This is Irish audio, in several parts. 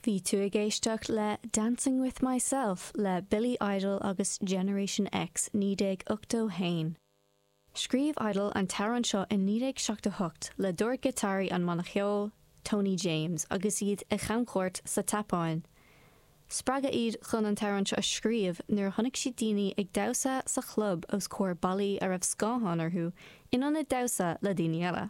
Bhí tú ag éisteacht le Dancing With Myself le Billy Idol agus Generation X 1981. Scríobh Idol an t-amhrán seo i 1978 le dordghiotáraí an bhanna cheoil, Tony James, agus iad ar chamchuairt sa tSeapáin. Spreagadh iad chun an t-amhrán seo a scríobh nuair a chonaic siad daoine ag damhsa sa chlub os comhair ballaí a raibh scáthán orthu in ionad damhsa le daoine eile.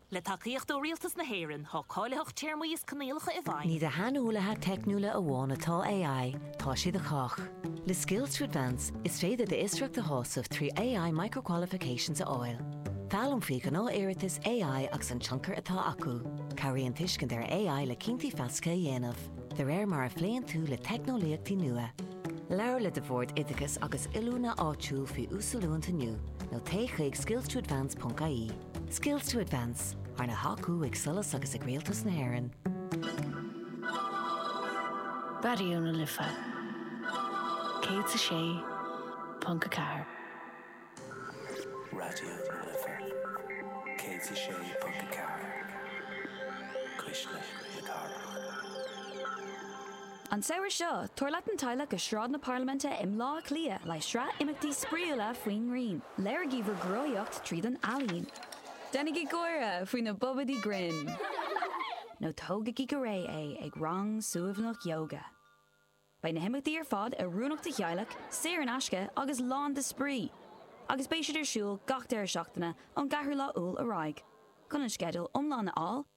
Le tacaíocht ó Rialtas na hÉireann, tá cáilitheacht téarmaí is coinníollacha i bhfeidhm. Ní do shaineolaithe teicniúla amháin atá AI, tá sé do chách. Le Skills to Advance, is féidir d'fhiosracht a shásamh trí AI Micro-Qualifications a fháil. Foghlaim faoi ghnáthiarratais AI agus an tionchar atá acu. Cabhraíonn tuiscint ar AI le cinntí feasacha a dhéanamh, de réir mar a phléann tú le teicneolaíochtaí nua. Labhair le do Bhord Oideachais agus Oiliúna áitiúil faoi uasoiliúint inniu, nó téigh chuig skills-to-advance.ie. Skills to Advance, arna thacú ag SOLAS agus ag Rialtas na hÉireann. Raidió na Life 106.4. Raidió na Life 106.4, Cuisle na Cathrach. An samhradh seo, tabhair leat an teaghlach go Sráid na Parlaiminte i mBleá Cliath le sraith imeachtaí spraíúla faoin ngrian. Léirigí bhur gcruthaíocht tríd an ealaín. Déanaigí gáire faoi na bobaidí grinn. Nó tógaigí go réidh é ag rang suaimhneach yoga. Beidh na himeachtaí ar fad oiriúnach do theaghlaigh, saor in aisce agus lán de spraoi, agus beidh siad ar siúl gach deireadh seachtaine ón gceathrú lá Iúil ar aghaidh. Chun an sceideal iomlán a fháil,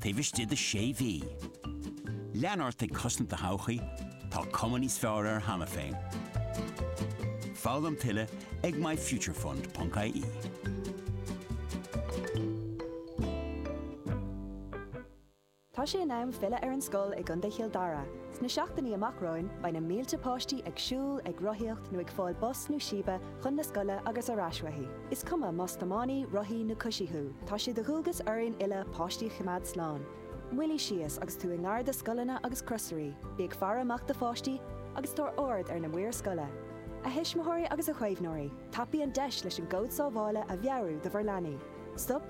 taobh istigh de sé mhí. Lean ort ag cosaint do thodhchaí, tá cuma níos fearr air cheana féin. Foghlaim tuilleadh ag myfuturefund.ie. Tá sé in am filleadh ar an scoil i gContae Chill Dara. Sna seachtainí amach romhainn, beidh na mílte páistí ag siúl, ag rothaíocht nó ag fáil bus nó síbe chun na scoile agus ar ais uaithi. Is cuma más tiománaí, rothaí nó coisí thú, tá sé de dhualgas orainn uile páistí a choimeád slán. Moilligh síos agus tú i ngar do scoileanna agus crosairí, bí ag faire amach do pháistí, agus tabhair aird ar na maoir scoile. A thuismitheoirí agus a chaomhnóirí, tapaígí an deis leis an gcód sábhála a mheabhrú do bhur leanaí. Stop,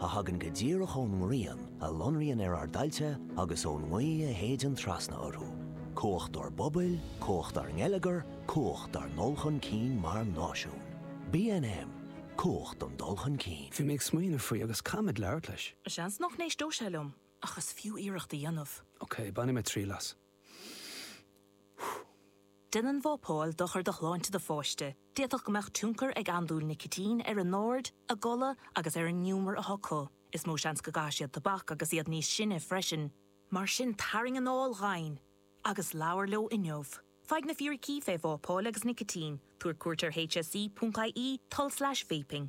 a thagann go díreach ón ngrian a lonraíonn ar ár dtailte agus ón ngaoth a shéideann trasna orthu, cumhacht dár bpobail, cumhacht dár ngeilleagar, cumhacht dár ndul chun cinn mar náisiún. BNM, Cumhacht don dul chun cinn. Bhí mé ag smaoineamh faoi agus caithfidh mé labhairt leis. Seans nach n-éisteodh sé liom, ach is fiú iarracht a dhéanamh. Ok, bainfidh mé triail as. Déanann vapáil dochar do shláinte do pháiste, d'fhéadfadh go mbeadh tionchar ag andúil nicitín ar a n-aird, a gcodladh agus ar an ngiúmar atá acu. Is mó seans go gcaithfidh siad tobac agus iad níos sine freisin. Mar sin tarraing anáil dhomhain agus labhair leo inniu faigh na fíricí faoi vapáil agus nicitín, tabhair cuairt ar hse.ie, tulslais vaping.